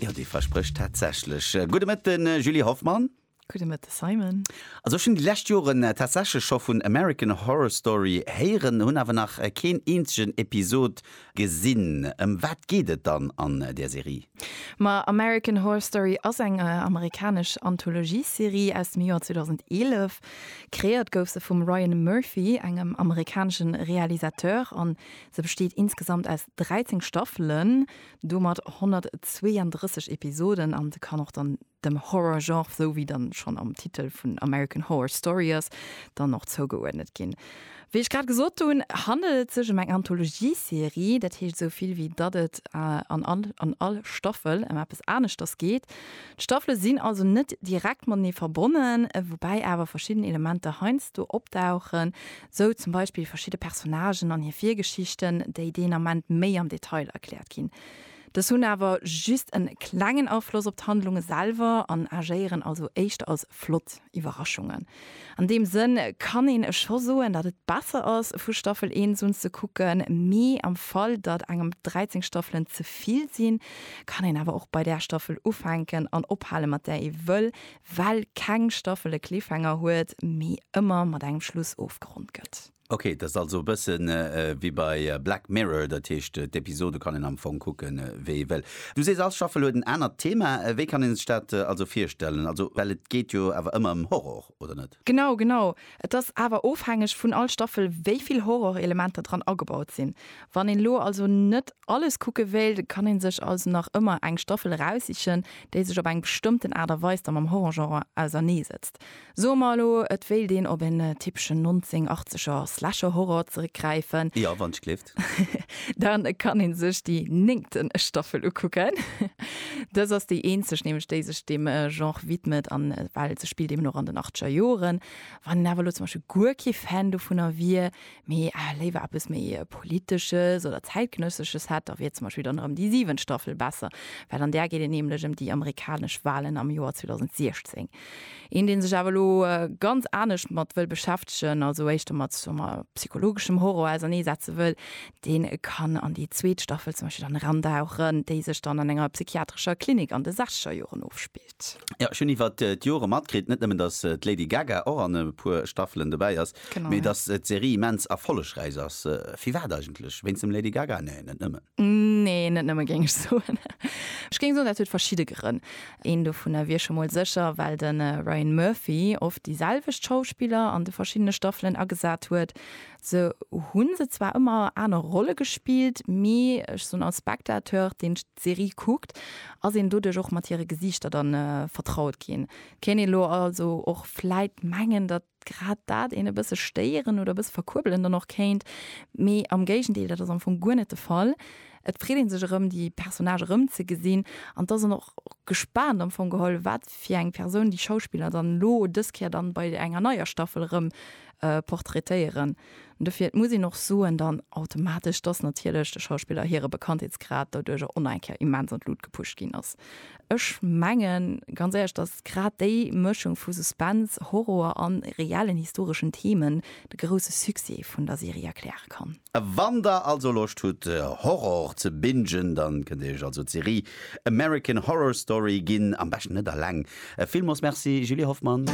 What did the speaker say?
Jo, dee versprécht tatsächlech. Gudde Mëtten, Julie Hoffmann. Gudde Mëtten, Simon. Also ech hunn déi lescht Joren tatsächlech scho vun American Horror Story héieren, hunn awer nach keen eenzegen Episod gesinn. Ëm wat geet et dann an där Serie? Ma American Horror Story ass eng amerikanesch Anthologiesserie aus dem Joer 2011. Kreéiert gouf se vum Ryan Murphy, engem amerikanesche Realisateur, an Se besteet insgesamt aus 13 Staffelen, domat 132 Episoden an se kann och dann dem Horror-Genre, sou wéi dann schonn am Titel vun American Horror Story ass, dann och zougeuerdnet ginn. Wéi ech grad gesot hunn, handelt et sech em eng Anthologie-Serie, dat heescht sou vill wéi datt et an all an all Staffel em eppes aneschters geet. D'Staffele sinn also net direkt matenee verbonnen, woubäi awer verschidden Elementer heiansdo opdauchen, Sou zum Beispill verschidde Personnagen an hir Virgeschichten, déi deen Ament méi am Detail erkläert ginn. Dës hunn awer just en klengen Afloss op d'Handlunge selwer an agéieren also éischter als flott Iwwerraschungen. An deem Sënn kann een scho soen, datt et besser ass, vu Staffel eent un ze kucken. Mee am Fall, datt engem dräizéng Staffelen ze vill sinn, kann een awer och bei där Staffel ufänken an ophale mat där ee wëll, well keng Staffel e Cliffhanger huet, mee ëmmer mat engem Schluss ofgeronnt gëtt. Ok, dat ass also e bëssen wéi bei Black Mirror, dat heescht d'Episode kann een am Fong kucke wéi ee wëll. Du sees all Staffel huet en anert Thema, wéi kann een sech dat also virstellen? Also well et geet jo awer ëmmer ëm Horror, oder net? Genau, genau. Et ass awer ofhängeg vun all Staffel wéi vill Horrorelementer dran agebaut sinn. Wann een elo also net alles kucke wéilt, kann een sech also nach ëmmer eng Staffel eraussichen, déi sech op eng bestëmmten Aart a Weis da mam Horrorgenre ausernee setzt. Soe mer elo, et wéilt een op en typeschen 1980er Slasher-Horror zeréckgräifen. Jo, wann ech gleef. Respekt. Dann kann een sech déi néngten Staffel ukucken. Dës ass déi eenzeg nämlech déi sech deem Genre widmet an well se spillt eben och an den achteger Joren. Wann een awer elo zum Beispill guer kee Fan dovunner wier, mee léiwer eppes méi politesches oder zäitgenëssesches hätt, da wier zum Beispill dann erëm déi siwent Staffel besser, well an där geet et nämlech ëm déi amerikanesch Walen am Joer 2016. Een dee sech awer elo ganz anescht domat wëll beschäftegen, also éischter mat psychologeschem Horror ausernee setze wëll, dee kann an déi zweet Staffel zum Beispill dann erandauchen, déi sech dann an enger psychiatrescher Klinik an de sechzeger Joren ofspillt. Jo, ech hunn iwwer d'Jore matkritt, net nëmmen datt d'Lady Gaga och an e puer Staffelen dobäi ass, mee datt d'Serie immens erfollegräich ass. Firwat eigentlech? Wéinst dem Lady Gaga? Nee, net nëmmen. Nee, net nëmme géing ech soen. Ech géing soen, dat huet verschidde Grënn. Een dovunner wier scho mol sécher, well de Ryan Murphy oft déi selwecht Schauspiller an de verschiddene Staffelen agesat huet. Se hu se zwar ëmmer aner Rolle gespillt, mee ech soen, als Spectateur, deen d'Serie kuckt, ass een doduerch och mat hire Gesiichter dann vertraut ginn. Kéint ee lo also och vläit mengen, datt grad dat een e bësse stéieren oder e bësse verkuerbelen dann och kéint, mee am Géigendeel, dat ass am Fong guer net de Fall. Et freet ee sech erëm, déi Personnage erëmzegesinn an et ass een och gespaant am Fong geholl, wat fir eng Persoun déi Schauspiller dann elo dës Kéier dann bei enger neier Staffel erëm portraitéieren. Dofir, et muss een och soen dann automatesch, dass natierlech de Schauspiller hire Bekanntheetsgrad doduerch och eng Kéier immens an d'Lut gepusht ginn ass. Ech mengen ganz éierlech, dass grad déi Mëschung vu Suspense, Horror an reellen historeschen Themen de grousse Succès vun der Serie erkläre kann. Wann der also Loscht hutt Horror ze bingen, dann kënnt dir iech also d'Serie American Horror Story ginn. Am beschten net alleng. Villmols Merci Julie Hoffmann.